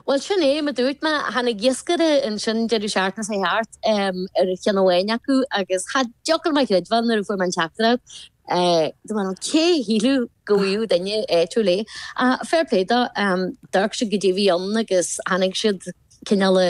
Bhuel, sin é mar dúirt mé, tháinig iascaire ansin deireadh seachtaine seo thart ar cheann amháin acu agus cha dtiocfadh liom a chreidbheáil nuair a fuair mé an teachtaireacht, dúirt mé, cé a shílfeadh go bhfaigheadh duine áitiúil é? Ach fair play dó, d'amharc siad goidé a bhí ann agus tháinig siad cineál i.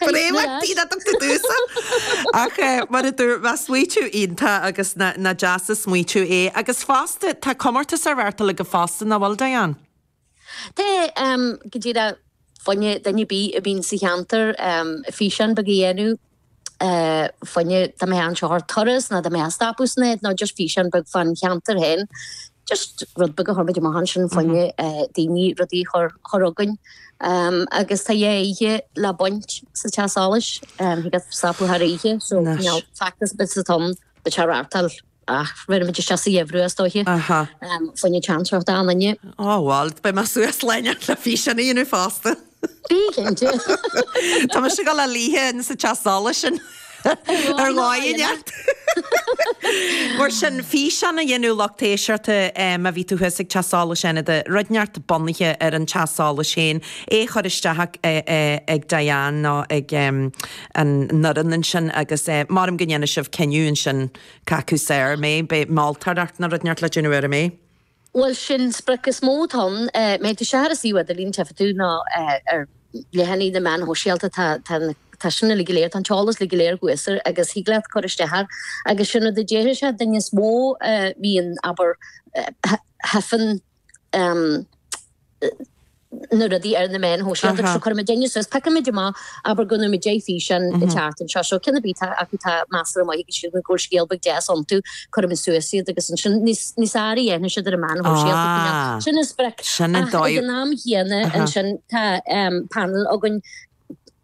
Bréagach bíonn at an t-dusa. Ach mar a déarfá, nach smaoitiú iontach agus nach deas an smaoitiú é. Agus fosta, tá comórtas á reáchtáil agaibh fosta, nach bhfuil, Diane? Tá, go dtig le, you know, duine ar bith a bhíonn sa cheantar físeán beag a dhéanamh, you know dá mbeifeá anseo ar turas ná dá mbeifeá ag stopadh san áit ná just físeán beag fán cheantar féin. just rud beag a chuir muid amach ansin you know daoine rudaí a chur chugainn um, agus tá dhá oíche le baint sa teach solais um, thig leat stopadh thar oíche so Nice. you know factus bit sa tom dá reáchtáil ach rithfidh muid isteach sa gheimhreadh is dóiche Aha. um, faoine teantracht an inne Á bhuel, beidh mé suas lena le físeán a dhéanamh fosta. Bí cinnte. Tá mise ag dul a luí ins an teach solais sin ar dhóigh ineacht. Mar sin, físeán a dhéanamh lucht éisteachta má bhí tú thuas ag teach solais Fhánada, rud ineacht bunaithe ar an teach solais féin, é a chur isteach ag Diane nó ag an fhoireann ansin agus measaim go ndéanfaidh sibh cinneadh ansin cé acu is fearr, em, beidh moltóireacht nó rud ineacht le déanamh air, an mbeidh? Bhuel, sin sprioc is mó atá ann. Má tá tú ar an suíomh idirlín tchífidh tú ná ar leathanaigh na meáin shóisialta. Tá tá sin uilig go léir, tá an t-eolas uilig go léir thuas air agus thig leat cur isteach air. Agus sin rud a déarfaidh sé duine is mó a bhíonn, abair, hyphen, eh, na rudaí ar na meáin shóisialta seo, cuirimid éinne suas, piocaimid amach, abair go bhfaighimid deich físeán isteach anseo, seo ceann ar bith atá acu, atá measartha maith agus go bhfuil scéal beag deas iontu, cuirimid suas iad agus ansin níos fearr a dhéanfaidh siad ar na meáin shóisialta faoin am sin, an sprioc, ach ag an am chéanna ansin tá panel againn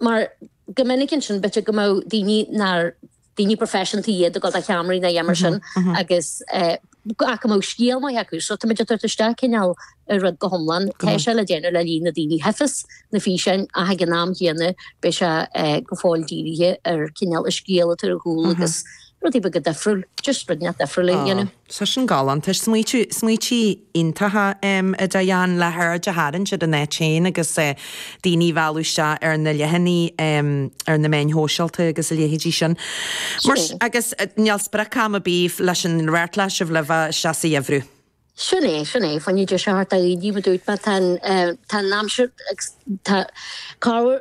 mar go minic ansin b'fhéidir go mbeadh daoine nár. daoine proifisiúnta iad ag gabháil do cheamaraí ná a dhath mar sin agus ach go mbeadh scéal maith acu so táimid ag tabhairt isteach cineál an rud go hiomlán. Tá sé le déanamh le líon na daoine a tchífeas na físeáin ach ag an am chéanna beidh sé go fóill dírithe ar cineál an scéal atá ar a chúl agus rud beag difriúil, just rud ineacht difriúil a dhéanamh. Tá sin galánta. Is smaointe iontacha iad, Diane, le haird a tharraingt ar an áit féin agus daoine a mhealladh isteach ar na leathanaigh ar na meáin shóisialta agus a leithéidí sin. Mar sin, agus níl sprioc-am ar bith leis an rud, rachaidh sibh libh isteach sa gheimhreadh. Sin é, sin é. Faigh na deise thart, a Aoidí, mar dúirt mé, tá an aimsir agus tá cabhair.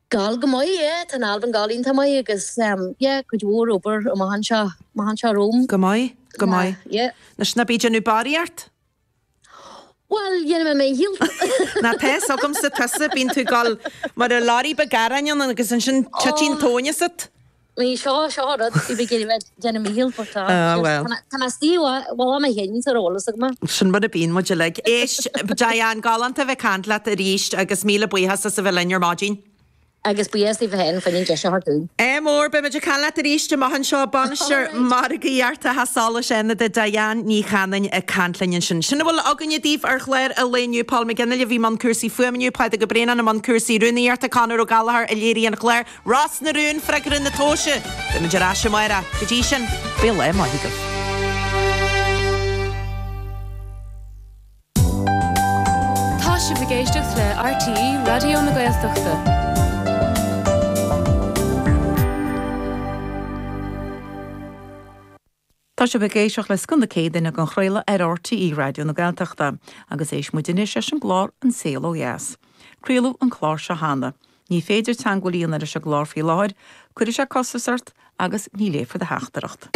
Gabháil go maith, yeah, tá an t-albam ag gabháil iontach maith agus yeah, cuid mhór obair amach anseo, amach anseo romham. Go maith, go maith. Yeah. Anois ná bí ag déanamh barraíocht! Bhuel, dhéanfaidh mé mo dhícheall. Ná tá's agamsa tusa, bíonn tú ag dul mar a lorry ba gearráin ann agus ansin titeann an tóin asat. Ní seo, seo an rud, cibé céard a bheith ag déanamh Michelle fort, tá, Ah, bhuel. tá mé suí uaidh, bhuel, am a chéile, ní saor eolas agam. Sin mar a bhíonn muid uilig. Éist, Diane, galánta a bheith caint leat arís agus míle buíochas as a bheith linn ar maidin. Agus buíochas daoibh féin faoin deis a thabhairt dúinn. Ádh mór, beimid ag caint leat arís amach anseo. Bainisteoir Margaíochta Theach Solais Fhánada, Diane Ní Chanainn, ag caint linn ansin. Sin a bhfuil againne daoibh ar chlár an lae inniu, Paul McGinley, a bhí i mbun cúrsaí fuaime inniu, Pádraig Ó Braonáin i mbun cúrsaí rúnaíochta, Conor Ó Gallachóir, a léirigh an clár, Ros na Rún, freagra na tomhaise. Beimid ar ais amáireach. Go dtí sin, bíodh lá maith agaibh. Tá sibh ag éisteacht le RTÉ Raidió na Gaeltachta. Tá sibh ag éisteacht le Scoth na Céadaoine dhá chraoladh ar RTÉ Raidió na Gaeltachta agus éistfidh muid anois leis an gclár An Saol Ó Dheas. Craoladh an clár seo cheana. Ní féidir teagmháil a dhéanamh leis an gclár faoi láthair, cuirfidh sé costas ort agus ní léifear do theachtaireacht.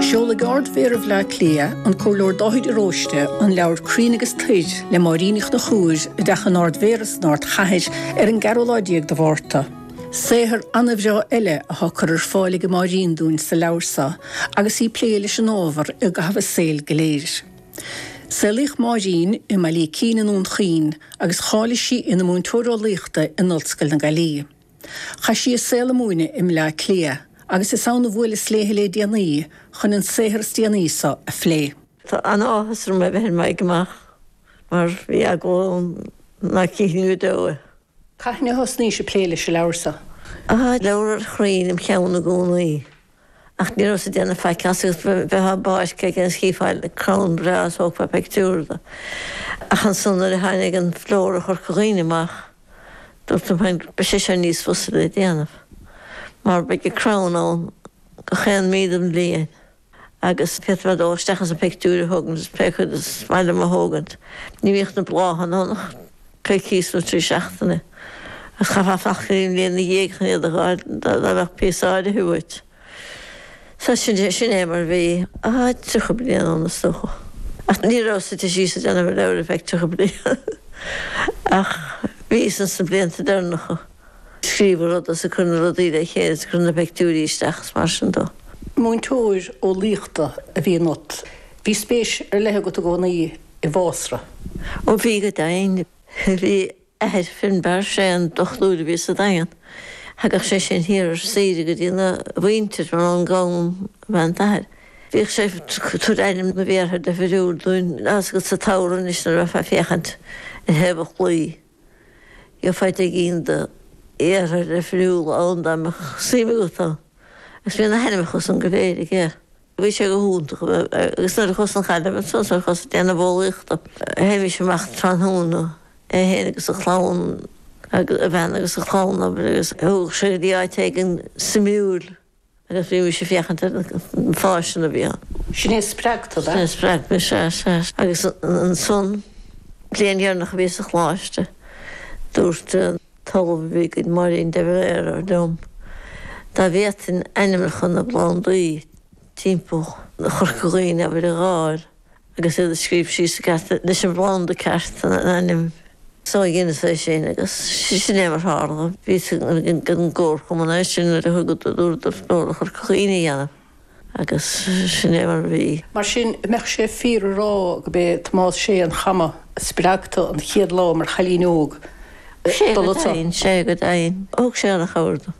Seolfaidh Ard-Mhéara Bhleá Cliath, an Comhairleoir Dáithí de Róiste, an leabhar Crainn agus Toir le Máirín Uí Chonchubhair i dTeach an Ard-Mhéara san Ardchathair ar an gceathrú lá déag de Mhárta. Saothar an-bhreá eile atá curtha ar fáil ag Máirín dúinn sa leabhar seo agus í ag plé leis an ábhar i gcaitheamh a saoil go léir. Saolaíodh Máirín i mBaile Ícín i nDún Chaoin agus cháiligh sí ina múinteoir eolaíochta in Ollscoil na Gaillimhe. Chaith sí a saol ag múineadh i mBleá Cliath agus is ann a bhuaileas léithe lé déanaí chun an saothar is déanaí seo a phlé. Tá an-áthas orm a bheith ar m'aghaidh amach mar bhí agó na cinn go deo. Cathain a thosnaís ag plé leis an leabhar seo. Tá leabhar ar chrainn im cheann i gcónaí, ach ní rabhas ag déanamh faic as, agus bheifeá in áit éigin is chífeá crann breá is thógfá pictiúr de. Ach ansan nuair a tháinig an Flóra Chorca Dhuibhne amach, dúrt liom féin, beidh sé seo níos fusa le déanamh, mar beidh an crann ann gach aon mhí den bhliain. Agus d'fhéadfá dul isteach is an pictiúr a thógaint is pé cuid is maith liom a thógaint? Ní bhíodh na bláthanna ann ach coicíos nó trí seachtaine, agus chaithfeá fanacht go dtí an bhliain ina dhiaidh chun iad a dh'fháil, dá mbeadh píosa áirithe uait. Sea, sin é, sin é mar a bhí, ah, tríocha bliain ó shin, is dócha. Ach ní rabhas suite síos ag déanamh an leabhair ar feadh tríocha bliain, ach bhíos ins na blianta deireanacha. scríobh a rud is ag cur na rudaí le chéile is ag cur na peictiúirí isteach is mar sin dó. Múinteoir eolaíochta a bhí ionat. Bhí spéis ar leith agat i gcónaí i bhfásra. Ó bhí go deimhin. Bhí athair Finbarr Sé, an dochtúir a bhí sa Daingean, thagadh sé sin thiar ar saoire go dtí na mhuintir, mar ón gCom ab ea an t-athair. Bhíodh sé ag tabhairt ainm na bhféartha deifiriúil dúinn, tá's agat sa tsamhradh anois nuair a bheifeá ag féachaint ar thaobh an chlaí. Gheofá fiche éigin d'fhéartha difriúla ann dá mbeadh suim agat ann, agus bhí na hainmneacha san go léir aige. Bhí sé go hiontach, agus nuair a chuas 'on Ghaillimh ansan, nuair a chuas-sa ag déanamh eolaíochta, théimis amach tráthnóna, é féin agus a chlann, a bhean agus a chlann, agus thugadh sé go dtí áit éigin suimiúil. Agus bhí mise ag féachaint ar na fáistine a bhí ann. Sin é a spreag tu, Sin é a spreag mé, sea, sea. Agus ansan, bliain dheireanach a bhíos sa Choláiste, dúirt an tOllamh a bhí againn, Máirín de Valera, liom, dá bhféadfainn ainmneacha na bplandaí timpeall Chorca Dhuibhne a bhailiú, a dh'fháil, agus iad a scríobh síos i gceart leis an bplanda ceart an ainm, so dheineas é sin agus sin é mar tharla. Bhí a fhios ag an gcomharchumann é sin nuair a thugadar cuireadh dom Flóra Chorca Dhuibhne a dhéanamh agus sin é mar a bhí. Mar sin, an mbeadh sé fíor a rá go b'é Tomás Sé an Choma a spreag tu an chéad lá mar chailín óg dul anso? Sé go deimhin, sé go deimhin. Thug sé an-chabhair dom.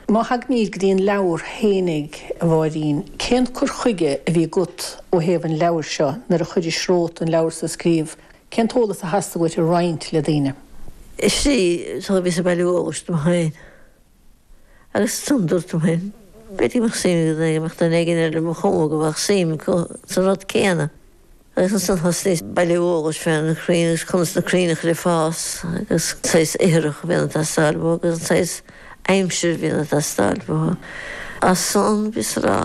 Má thagaimíd go dtí an leabhar féinig, a Mháirín, cén cur chuige a bhí agat ó thaobh an leabhair seo nuair a chuiris romhat an leabhar so a scríobh? Cén t-eolas a theastaigh uait a roinnt le daoine? Sea, so bhíos ag bailiú eolais dom féin, agus ansan, dúrt liom féin, b'fhéidir go mbeadh suim ag duine éigin, bheadh duine éigin ar mo chuma go mbeadh suim acu sa rud céanna. Agus ansan thosnaíos ag bailiú eolais fé na crainn agus conas na crainn a chur ag fás agus an saghas ithreach a bhíonn ag teastáil uathu agus an saghas aimsire a bhíonn ag teastáil uathu. Ansan bhíos ag rá,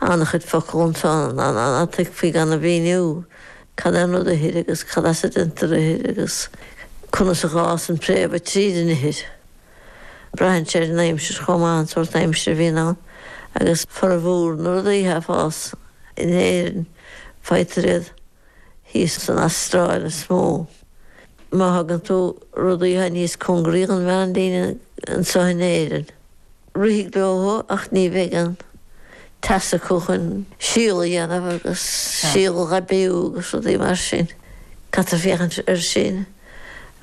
an-chuid focal ann ná tuigfí gan a mhíniú cad é an rud ithir agus cad as a deintear ithir agus conas a fhásann préamh tríd an ithir. Braitheann sé ar an aimsir chomh maith an sórt aimsire a bhíonn ann agus formhór na rudaí atá ag fás in Éirinn faightear iad thíos san Astráil is mó. Má thugann tú rudaí atá níos congaraí don mheánlíne anseo in Éirinn rithfidh leo thú ach ní bheidh an teas acu chun síol a dhéanamh agus síol a aibiú agus rudaí mar sin. Caithfear féachaint ar sin.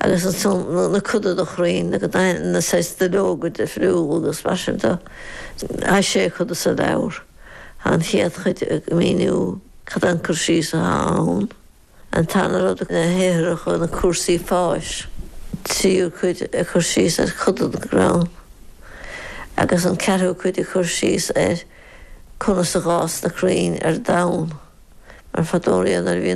agus ansan na coda de chrainn na gdaithe, na saghas duilleoga difriúla agus mar sin de. Tá sé chuid sa leabhar. Tá an chéad chuid ag míniú cad é an cur síos atá ann, an tarna rud na hithreacha, na cúrsaí fáis, an tríú cuid ag cur síos ar choda na gcrann agus an ceathrú cuid ag cur síos ar conas a d'fhás na crainn ar domhan, mar fadó riamh nuair a bhí an.